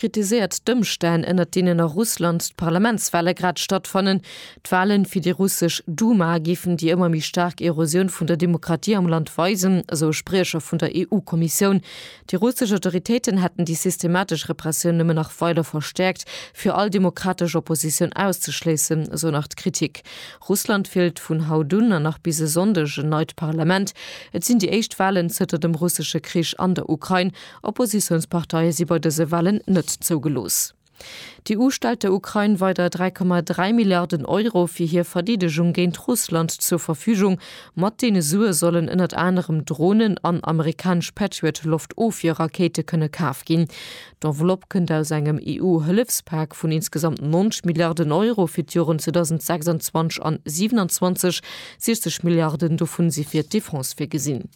kritiséiert d'Ëmstänn, ënnert deenen a Russland d'Parlamentswale grad stattfannen. D'Wale fir déi russesch Duma géifen déi ëmmer méi staark Erosioun vun der Demokratie am Land weisen, esou e Spriecher vun der EU-Kommissioun. Déi russesch Autoritéiten hätten déi systematesch Repressioun nëmmen nach weider verstäerkt, fir all demokratesch Oppositioun auszeschléissen, esou nach d'Kritik. Russland wielt vun haut un an nach bis e Sonndeg en neit Parlament. Et sinn déi éischt Walen zënter dem russesche Krich an der Ukrain Oppositiounsparteie si bei dëse Wahlen net zougelooss. D'EU stellt der Ukrain weider 3,3 Milliarden Euro fir hir Verdeedegung géint Russland zur Verfügung. Mat deene Sue sollen ënnert anerem Dronen an amerikanesch Patriot-Loftofwierrakéite kënne kaf ginn. D'Enveloppe kënnt aus engem EU-Hëllefspak vun insgesamt 90 Milliarden Euro fir d'Joren 2026 an 27, 60 Milliarden dovun si fir d'Defense virgesinn.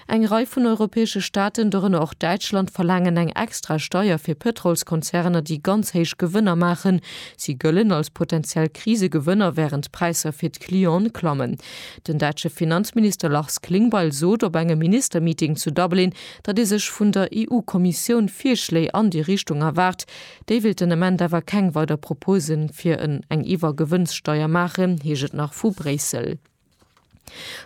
Eng Rei vun europäesche Staaten, dorënner och Däitschland, verlaangen eng extra Steier fir Pëtrolskonzerner, déi ganz héich Gewënner maachen. Si gëllen als potentiell Krisegewënner, wärend d'Präisser fir d'Clienten klammen. Den däitsche Finanzminister Lars Klingbeil sot op engem Ministermeeting zu Dublin, datt ee sech vun der EU-Kommissioun Virschléi an déi Richtung erwaart. Déi wéilt den Ament awer keng weider Propose fir en eng Iwwergewënnssteier maachen, heescht et nach vu Bréissel.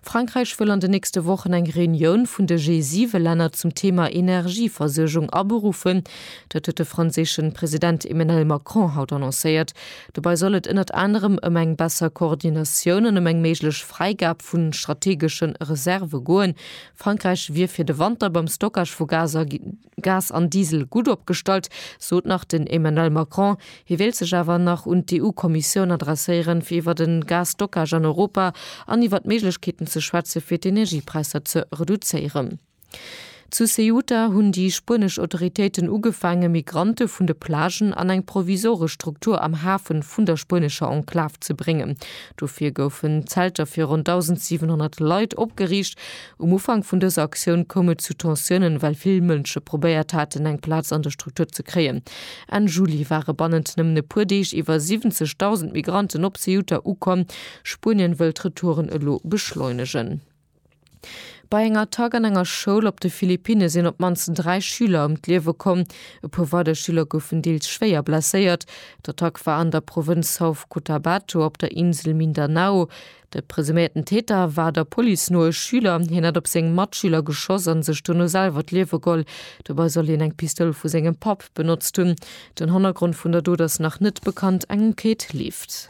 Frankräich wëll an de nächste Wochen eng Reunioun vun de G7-Länner zum Thema Energieversuergung aberuffen. Dat huet de franséische President Emmenel Macron haut annoncéiert. Dobei soll et ënnert anerem ëm eng besser Koordinatioun an ëm eng méiglech Fräigab vu strategesche Reserve goen. Frankräich wier fir de Wanter beim Stockage vu Gaser. Gas an Diesel gutt opgestallt, sot nach den Emmanuel Macron. Hie wéilt sech awer nach un d'EU-Kommissioun adresséieren, fir iwwer de Gas-Stockage an Europa an iwwer d'Méiglechkeeten ze schwätzen, fir d'Energiepräisser ze reduzéieren. Zu Ceuta hunn déi spuenesch Autoritéiten ugefaange Migrante vun de Plagen an eng provisoresch Struktur am Hafe vun der spuenescher Enklav ze bréngen. Dofir goufen Zelter fir ronn 1.700 Leit opgeriicht. Um Ufank vun dëser Aktioun koum et zu Tensiounen, well vill Mënsche probéiert haten, eng Plaz an der Struktur ze kréien. Enn Juli ware bannent nëmmen e puer Deeg iwwer 70.000 Migranten op Ceuta ukomm. Spuenien wëll d'Retouren elo beschleunegen. Bei enger Attack an enger Schoul op de Philippinne sinn op d'mannst dräi Schüler ëm d'Liewe komm. E puer weider Schüler goufen deels schwéier blesséiert. D'Attack war an der Provënz South Cotabato op der Insel Mindanao. De presuméierten Täter war der Police no e Schüler. Hien hätt op seng Matschüler geschoss a sech dono selwer d'Liewe geholl. Dobei soll hien eng Pistoul vu sengem Papp benotzt hunn. Den Hannergrond vun der Dot ass nach net bekannt, eng Enquête leeft.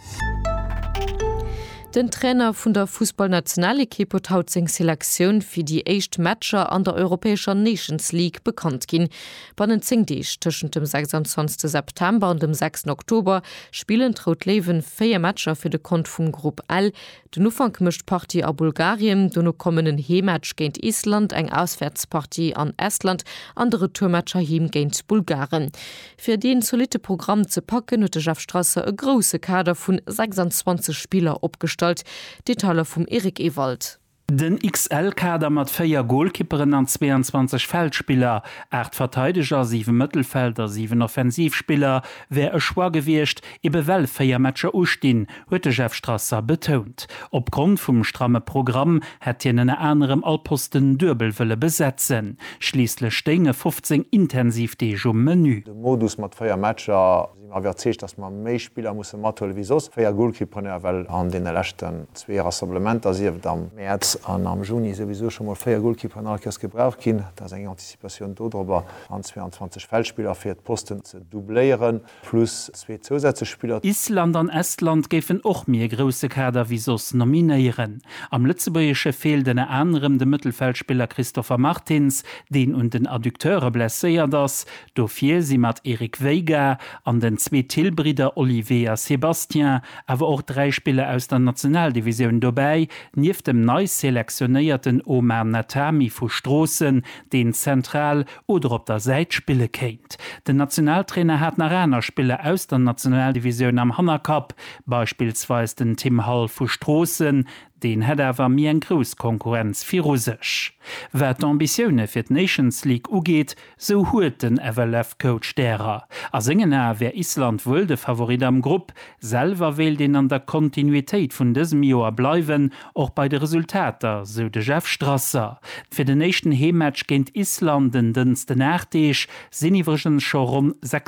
Den Trainer vun der Fussballnationalekipp huet haut seng Selektioun fir déi éischt Matcher an der europäescher Nations League bekannt ginn. Bannent 10 Deeg, tëschent dem 26 September an dem 6 Oktober, spillen d'Rout Léiwen 4 Matcher fir de Kont vum Grupp L. Den Ufank mécht d'Partie a Bulgarien, dono kommen en Heemmatch géint Island, eng Auswäertspartie an Estland an de Retourmatch heiheem géint d'Bulgaren. Fir dee zolitte Programm ze packen, huet de Jeff Strasser e grousse Kader vun 26 Spiller opgestallt. Detailer vum Eric Ewald. Den XL-Kader mat 4 Golkipperen an 22 Feldspiller, 8 Verteideger, 7 Mëttelfeld a 7 Offensivspiller, wär e Choix gewiescht, ebe well 4 Matcher ustinn, huet de Jeff Strasser betount. Opgrond vum stramme Programm hätt hien ënner anerem all Posten duebel wëlle besetzen. Schliisslech stéinge 15 intensiv Deeg um Menü. De Modus mat 4 Matcher. sinn mer iwwerzeegt, dass mer méi Spiller musse mathuelen, wéi soss 4 Goalkeeperneer, well an deene leschten zwee Rassemblementer, sieft am Mäerz an am Juni, souwisou scho mol 4 Goalkeeperen all Kéiers gebraucht ginn. Dat ass eng Anticipatioun dodrobber, an 22 Feldspiller, fir d'Posten ze doubléieren, plus zwee zousätzlech Spiller. Island an Estland géifen och méi e grousse Kader wéi soss nominéieren. Am Lëtzebuergesche feelt ënner anerem de Mëttelfeldspiller Christopher Martins, deen un den Adducteure blesséiert ass, Dofir si mat Eric Veiga an den zwee Thill-Bridder Olivier a Sébastien awer och dräi Spiller aus der Nationaldivisioun dobäi, nieft dem nei selektionéierten Omar Natami vu Stroossen, deen zentral oder op der Säit spille kéint. Den Nationaltrainer hat nach aner Spiller aus der Nationaldivisioun am Hannerkapp, beispillsweis den Tim Hall vu Stroossen, Deen hätt awer méi eng grouss Konkurrenz viru sech. Wat d'Ambitioune fir d'Nations League ugeet, sou huet den FLF-Coach därer. A sengen Ae wär Island wuel de Favorit am Grupp. Selwer wéilt een an der Kontinuitéit vun dësem Joer bleiwen, och bei de Resultater, sou de Jeff Strasser. Fir den éischten Heemmatch géint Island en Dënschden, 8 Deeg sinn iwwregens scho ronn 6.